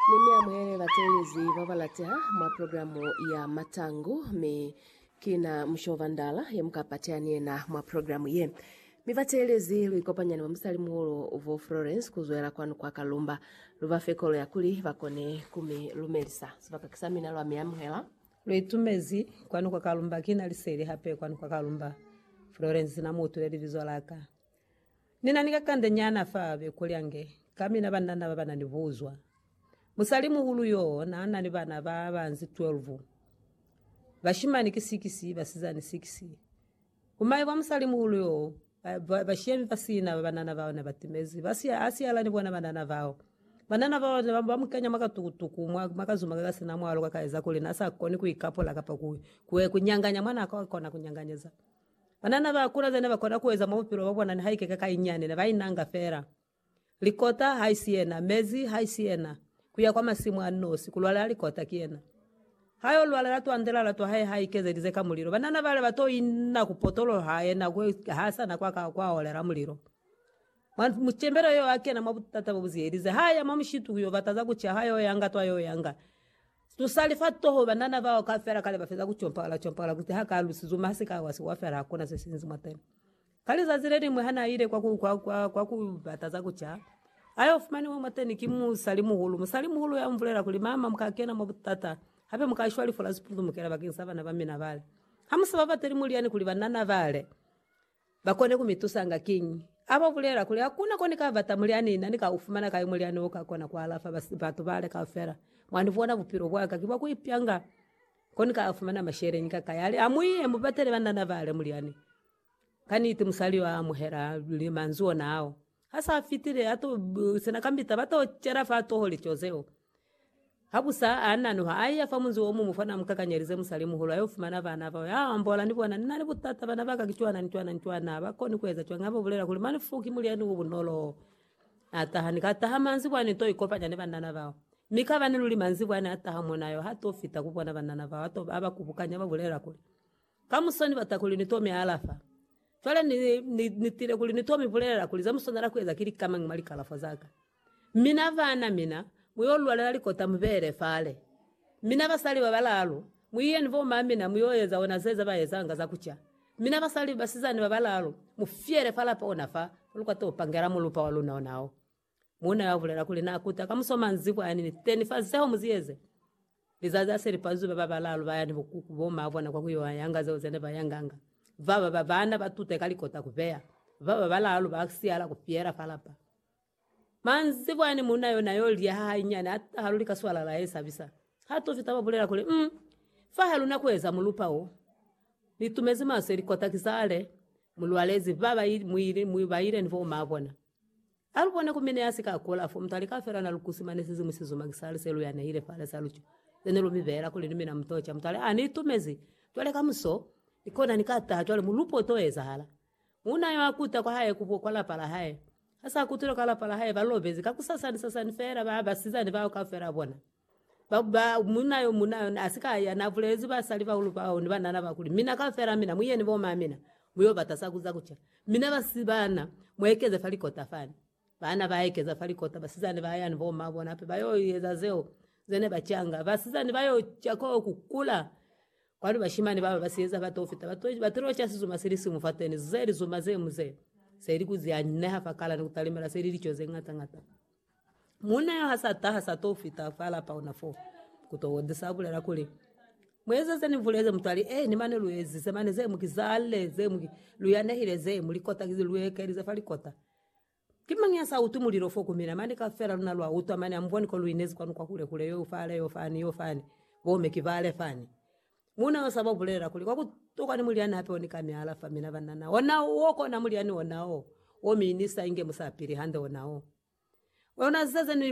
Ne ni amuhele batelezi ba ba lateha mwa programu ya Matangu, mi ki na Mushoba Ndala ye mu ka pateha ni yena mwa programu ye. Mi batelezi lu ikopanya ni bamusalimuhulu bo Florence ku zwela kwanu kwa Kalumba. Lu ba fe kolo ya kuli ba kone ku mi lumelisa. Sibaka ki sa mina lwa mi amuhela. Lu itumezi kwanu kwa Kalumba. Ki na liseli hape kwanu kwa Kalumba. Florence na mu utwile libizo la ka. Ni na ni kakanda nyana fa be kulya nge ka mina banna naba bana ni buzwa. Musalimuhulu yoo na na ni bana ba banzi 12. Bashimani ki 6, basizani 6. Ku maye kwa musalimuhulu yoo, ba, ba shiya mi ba sina ba banana bao ne ba timezi. Ba siya, a siyala ni bona banana bao. Banana bao ne ba, ba mu kenya mwa katukutuku, mwa, mwa kazuma ka ka sina mwalo ka ka eza kuli na sa koni ku ikapula kapa ku, ku, ku nyanganya mwa na ka kona ku nyanganyeza. Banana ba kula zene ba kona ku eza mwa bupilo bwa bona nihaike ka ka inyani ne ba inanga fela. Likota haisi yena, mezi haisi yena, ku ya kwa masimu a nosi, ku lwalela likota ki yena. Ha yo lwalela twandela la twa hae ha ikezelize ka mulilo. Banana bale ba to inna ku potolo ha yena kwe ha sa na kwa ka kwa olela mulilo. Mwa mucembelo yo akena mwa butata bobuzihelize. Ha ya mwa mushitu kuyo bata za kuca, ha yo yanga twa yo yanga. Tusali fa toho banana bao kaufela kale bafeza kucompagala compagala kuti ha ka lusizo mi hasi ka wasi wafela hakuna se sinzi mwa tena. Ka lizazi lelingwe ha naile kwa ku kwa kwa kwa ku bata za kuca, ayo fumaniwe mwa teni ki musali muhulu. Musali muhulu ya mbulela kuli, Mama, muka kena mwa butata, hape muka shwa lifu la sipunzumukela bakeng sa bana ba mina bale. Ha musa babateli mulyani kuli banana bale. Bakone kumitusanga kiñi? Aba ubulela kuli, Hakuna ko nikabata mulyani, ina nikaufumana kai mulyani okakona kualafa batu bale kaufela? Mwa nibona bupilo bwaka ki bwa kuipyanga, ko nikafumana masheleñi kakai? Ali, Amuiye mubatele banana bale mulyani. Kaniti musali yo amuhela manzwi ona ao. Ha sa fitile, a to sena kambita, ba to cela fa toho lico zeo. Habusa a nanuha, a iya fa munzi o muñwi fana a mu kakanyelize musali-muhulu, a yo fumana bana bao. A ambola ni bona, Ni na ni butata, bana ba ka ki cwana ni cwana ni cwana, ha ba koni ku eza cwañi ha ba bulela kuli, Mane fo ki mulyani o bunolo. A taha, ni ka taha manzibwa, ni to ikopanya ni banana bao. Mi kabani luli manzibwa ne a taha mo na yo, ha to fita ku bona banana bao, a to, a ba kubukanya, a ba bulela kuli, Kamuso ni bata kuli ni to mi alafa. Cwale ni, ni, ni tile kuli ni to mi bulelela kuli za mu swanela ku eza ki lika mañi mwa likalafwa za ka. Mina bana, mina, mu yo lwalela likota mu bele fale. Mina basali ba balaalu, mu iye ni bo ma mina mu yo eza ona zeza ba ezanga za ku ca. Mina basali, basizani ba balaalu, mu fyele fa lapa ona fa, fa lu ka to pangela mulupa wa luna ona o. Muuna yo abulela kuli na kuta ka muso manzibwa yani ni 10 fa zeo mu zieze. Lizazi ha se li pazuzi, ba ba balaalu ba ya ni bukuku bo maa bona kwa ku yo yanga zeo ze ne ba yanganga. Ba ba ba bana ba tute ka likota ku beya, ba ba balaalu ba siyala ku fiela fa lapa. Manzibwa yani muuna yo na yo liha hanyinyani ha taha luli ka swalala ye sabisa. Ha to fita ba bulela kuli, Um, fa ha luna ku eza mulupa wo. Ni tumezi maso ilikota ki sale mu lwalezi. Ba ba mu ile, ba ile ni bo maa bona. Alubone ku mine ya sika kula, fo mutu alika fela na lukusi mane sizimu si zuma kisa lise lu ya nehile fale sa lucho. Zene lu mi bela kuli ni mina mutocha. Mutu ale, Ani itumezi. Cwale kamuso, ni kona ni ka taha cwale mulupo uto ezahala. Muuna yo akuta kwa hae kubo kwa lapa la hae. Hasa akutile kwa lapa la hae ba lobezi, kakusasani sasani fela ba basizani bao kaufela bona. Ba, ba, munna yo muna yona asika ya na bulezi basali baulu bao ni banana ba kuli, Mina kaufela mina, mu yeni bo mamina, mu yo bata sa kuza kuca. Mina ba si bana, mu ekeze fa likota fani. Bana ba ekeza fa likota, basizani ba ya ni bo ma bona hape ba yo eza zeo ze ne ba canga. Basizani ba yo ca ka ku kula, kwanu bashimani bao ba si eza ba to fita, ba to, ba tilo ca sizuma sili siñwi fateni. Ze lizuma ze mu ze, se li ku ze anyineha fa kala ni ku talimela, se li lico ze ñata ñata. Muuna yo ha sa taha, sa to fita fa lapa ona fo ku to wondisa, abulela kuli, Mu eze ze ni buleze, mutwali. Ee, ni mane lu ezize mane ze mu ki zalle, ze mu ki lu yanehile, ze mu likota ki lu ekelize fa likota. Ki mañi ya sa utwi mulilo fo ku mina? Mane kaufela luna lwa utwa, mane amuboni ko lu inezi kwanu kwa hule hule, yo fale, yo fani, yo fani, bo me ki bale fani. Muuna yo sa ba bulelela kuli, Kwa ku tokwa ni mulyani ape oni ka mi alafa, mina ba nana ona wo kona mulyani ona o, wo mi ni sa inge musapili hande ona o. Ona ziza ze ni